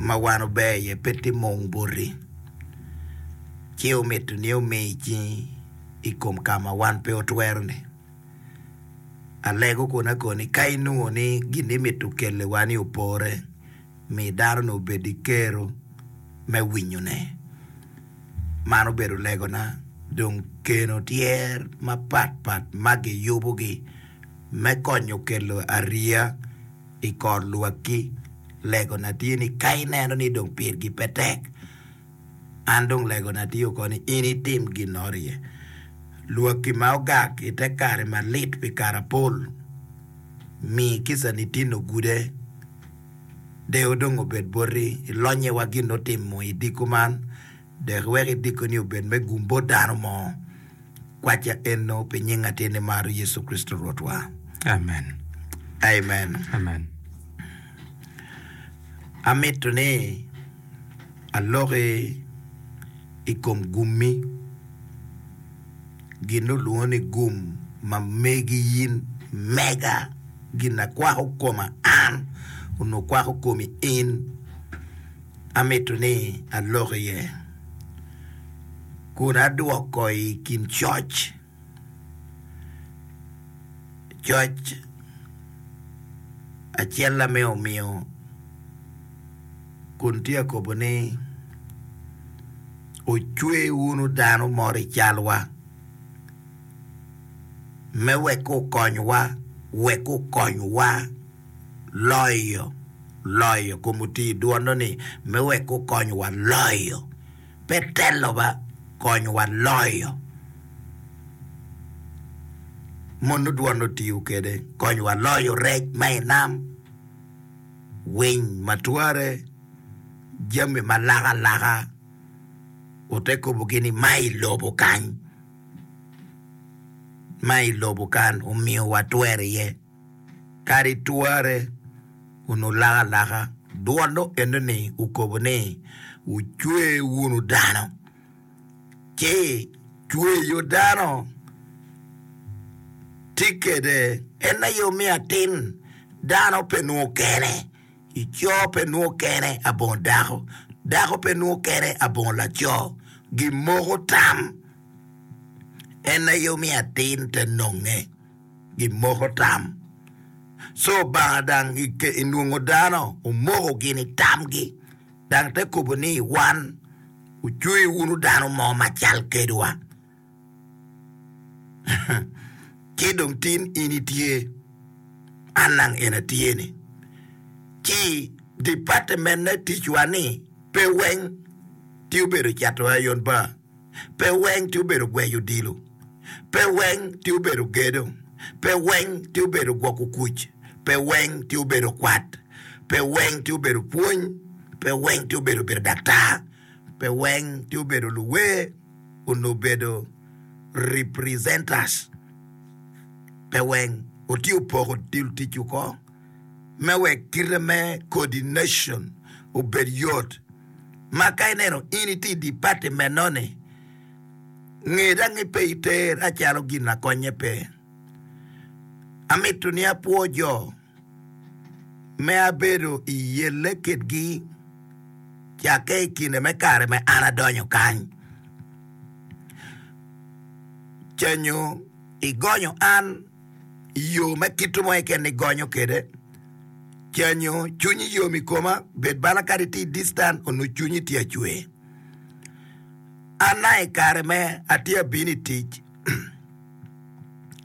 ma wan ober iye pe timo wung boti, ci omito ni omiyi cingi i kom ka ma wan pe watwero-ni. Alego kun akoni, ka inwongo ni gin imito kelliwa-ni opore, mi dano-ni obed ki kero me winyone. Man obedo legona. Dong keno tyer mapatpat ma giyubogi me konyo kelo ariya. i kor lwakki. Legona tye ni ka ineno ni dong pirgi pe tek, an dong legona tye oko ni in itim ginnoro iye. Lwakki ma ogak i te kare malit pi karapol, mi kicani tinno gude. Deyo dong obed boti, ilonye wa gin otimo i diko man, Dek iwek idikoni obed me gum bot dano mo. Kwacca eno pi nying Atin nimaro Yecu Kricito Rwotwa. Amen. Amen. Amen. Amito ni aloki i kom gummi, gin olwongo ni gum ma megi in, mega, gin a kwako koma an, onongo kwako komi in. amito ni alok iye kun adwoko i kin coc, coc acel-la me omiyo kun tye ka kobo ni ocwe wunu dano moro i calwa me wek okonywa wek okonywa. loyo, loyo kom otii dwono ni me wek gukony wa loyo pe telo ba kony wa loyo mono dwon otiyo kede kony wa loyo rec ma i nam winy ma tware jami ma laka laka ote kobo gi ni ma i lobo kany ma i lobo kan omiyo wa twero iye. Kadi tware wunu laka alaka, dwol eno-ni okobo ni, Wucwe wunu dano, ci cweyo dano tye kede. En aye omiyo atin, dano pe nwo kene, co pe nwo kene abongo dako, dako pe nwo kene abongo laco, gimoko tam. En aye omiyo atin te nonge. gimoko tam. Co Obanga dang enwongo dano omoko gini tamgi, dang te kobo ni wan wucweyo wunu dano mo macal kedwa, ci dong tin in itye, an dang en atye-ni. Ci dipatiment me ticwa-ni pe weng tye obedo cato ayon pa. Pe weng ti obedo gweyo odilo, pe weng ti obedo gedo, pe weng ti obedo gwoko kuc, pe weng ti obedo kwat, pe weng ti obedo pwony, pe weng ti obedo bedo daktar, pe weng ti obedo luwer onongo bedo representers, pe weng otiyo poko dil ticwu ko. me wek kite me coordination obed yot ma ka ineno in itye i department-noni, nge dang ni pe iter a calo gin na konye pe. Amito ni apwo jo me abedo i yelle kitgi cakke i kine me kare me an adonyo kany. Canyo igonyo an. i yo me kit mo keken ni gonyo kede canyo cwinyi yom i koma bed bala kadi ti distan onu cwinyi ti acwe ana i kare me ati abino i tic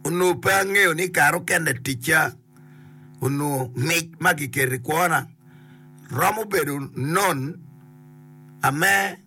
onu pe angeyo ni kare okene ticca onu mic ma kikeri kwona romo bedo non ame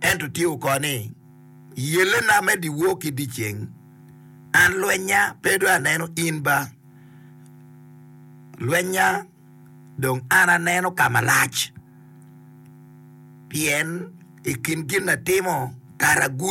Ento tye oko ni, Yellena me dyewor ki dyeceng, an lwenya pe dong aneno in ba, lwenya dong an aneno ka malac, pien i kin gin atimo kara gudo.